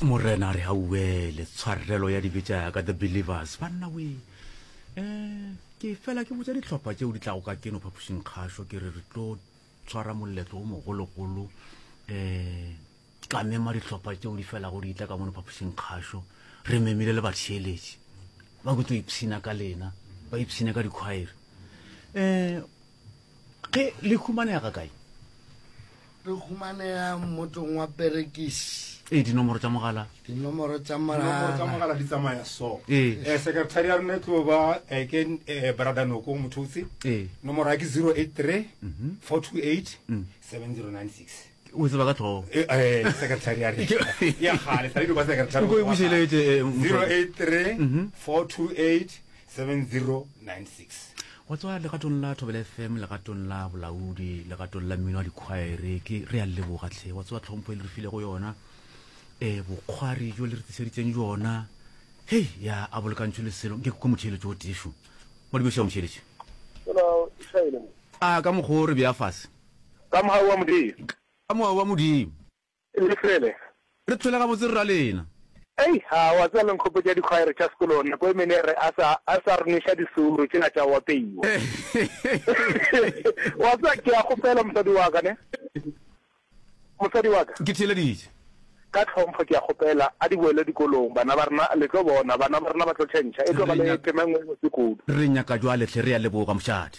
morena a re auele tshwarelo ya dibe tša ka the believers banna we um ke fela ke botsa ditlhopha tšeo di tlago ka keno phapošing kgašo ke re re tlo tshwara moletlo o mogologolo um ka mema ditlhopha tšeo di felago di itla ka mono phapošing kgašo re memile le batheeletši ba kutso ipshina ka lena ba ipshine ka dikhwaere um Ge le humanega ga kae? Re humanega motong wa Perekisi. Ee, dinomoro tša mogala. Dinomoro tša mogala di tsamaya so. Ee. Eh, Sekretari ya rona e tlo ba eh, ke eh, Brother Noko Mothotse. Ee. Nomoro ya ke 083 428 7096. o tseba ka tlhogo eh, eh, secretary ya re ya gale sa ba secretary go bušeletse 083 428 7096 wa tswa legatong la thobela fm legatong la bolaodi legatong la mmino wa dikgwaere ke re a leboga tlhe wa tswa tlhompho e le re file go yona um bokgwari jo le re tliseditseng jona hei ya a bolekantšho leselo nke koko motheeletso o tefo mo dibešo ya motheeletše a ka mokgwa o re bja fase Ka mohau wa Modimo. Ka mohau wa Modimo. Le fele. Re tshwele gabotse rra lena. Ei, a wa tseba le nkgopetša dikhwaere tša sekolong nako e mene re a sa, a sa re nweša diseuro tšela tša go apeiwa. Wa tseba ke a kgopela mosadi wa ka, ne? Mosadi wa ka. Ke theeleditše. Ka tlhompho ke a kgopela a di boele dikolong, bana ba rena, le tlo bona, bana ba rena ba tlo tšhentšha, e tlo ba le tema e nngwe e botse kudu. Re nyaka jwale hle, re a leboga, mošadi.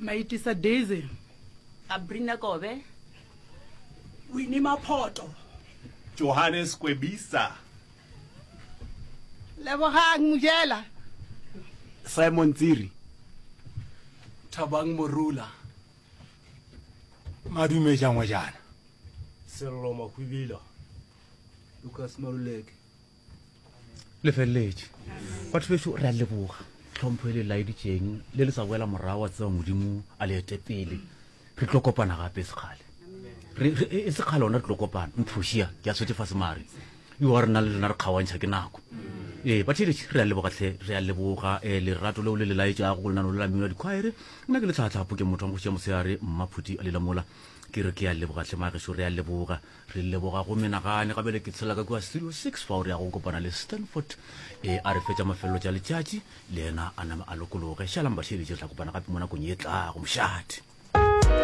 Maitisa Daisy. Abrina Kobe. Winnie Maphoto. Johannes Kwebisa. Lebogang Mojela. Simon Tsiri. Thabang Morula. Madume Jangwejana. Sello Mahwibila. Lucas Maluleke. le feleletše batho beso re a leboga tlhompho e le laeditseng le le sa boela morago wa tseba modimo a le ete pele re tlo kopana gape sekgale e, e sekgale ona re tlo kopana mphošia ke a swetse fase mare yo wa rena le lena re kgaoantšha ke nako ee batheletše re a leboga tlhe re a leboga um eh, lerato leo le le laetšago go lenano le la mmino wa dikgwaere nna ke le tlhatlhapo ke motho wa mogoši ya moseare mmaphuti a lela mola ke re ke a leboga tlhe mageso re a leboga Re leboga go menagane ga bjale ke tshela ka kua Studio 6 fa o re ya go kopana le Stanford e a re fetša mafelelo tša letšatši le yena a name a lokologe. Šalang batheeletši re tla kopana gape mo nakong ye tlago mošate.